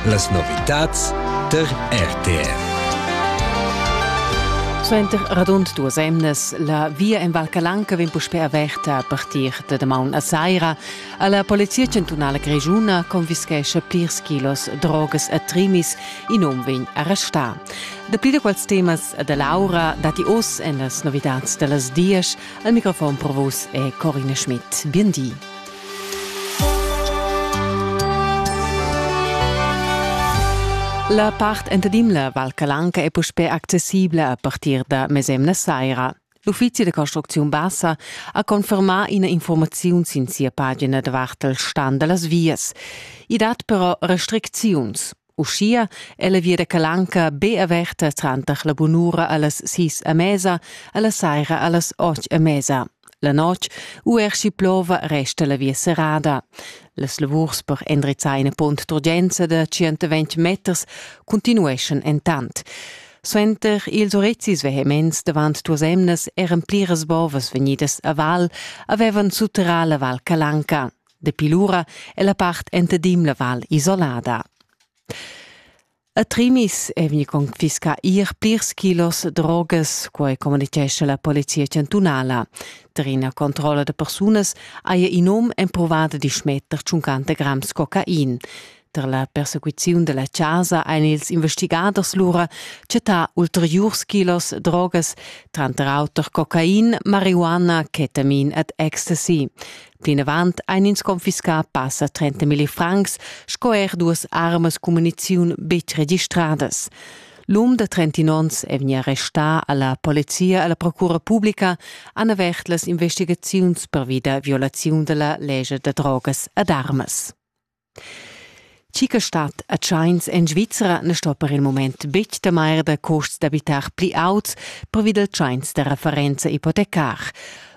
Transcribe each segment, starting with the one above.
Las novitads der RTF. Suenter radund duas emnas la via en Val Calanca vegn puspè averta a partir da damaun a saira. La Polizia chantunala grischuna confischescha plirs kilos drogas a Trimis. In um vegn arrestà. Dapli da quels temas da Laura datti oz en las novitads da las dias. Al microfon provus è Corinne Schmidt. Bien di. La part entadimla Val Calanca è puspè accessibla a partir da mesemna saira. L'uffizi da construcziun bassa ha confermà ina informaziun sin sia pagina davart il stan da las vias. I dat però restricziuns. Uschia è la via da Calanca be averta tranter la bunura a las sis a mesa e la saira a las otg a mesa. La notg, uerschi plova, resta la via serrada. Las lavurs per endrizzar ina pont d'urgenza da 120 meters continueschan entant. Suenter ils urizzis vehements davant duas emnas eran pliras bovas vegnidas a val avevan sutterrà la val Calanca. Dapi lura è la part entadim la val isolada. A Trimis è vegni confiscà ir plirs kilos drogas, quai communitgescha la polizia chantunala. Tar ina controlla da persunas haja in um empruvada di schmetter tschuncanta grams cocain. Tar la persecuziun dalla chasa ein ils investigaders lura chattà ulteriurs kilos drogas, tranter auter cocain, marihuana, ketamin ed ecstasy. Plinavant ein ins confiscà passa 30 milli francs sco er duas armas cun muniziun betg registradas. L'um de 30 onns è vegni arrestà alla polizia e alla procura publica han avert las investigaziuns pervi da violaziun della legge da drogas ed armas. Chi che stat a tschains en Svizra ne sto per il moment betg temair da custs d'abitar pli auts pervi dal tschains da referenza ipotecar.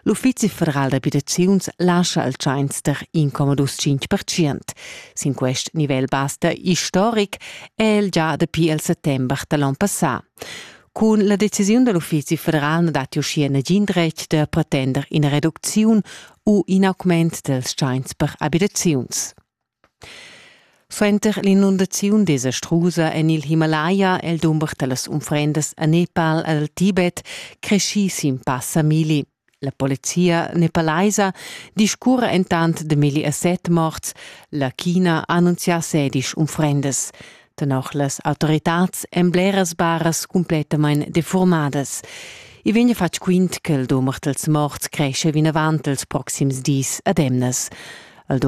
L'Uffizi federal d'abitaziuns lascia il tschains der incomodus 5%. Sin quest nivel basta istoric è el già dapi il settember da l'onn passà. Cun la decisiun da l'Uffizi federal na datti uschia nagin dretg da pretender ina reducziun u in augment dals tschains per abitaziuns. Suenter l'inundaziun desastrusa en il Himalaya è il dumber da las unfrendas a Nepal e al Tibet creschì sin passa milli. La polizia nepalaisa discurra entant da milli e set morts. La China ha annunzià sedisch unfrendas. Tenor las autoritads èn bleras baras cumplettamain defurmadas. I vegn fatg quint che il dumber dals morts cresce vinavant els proxims dis ad emnas. Il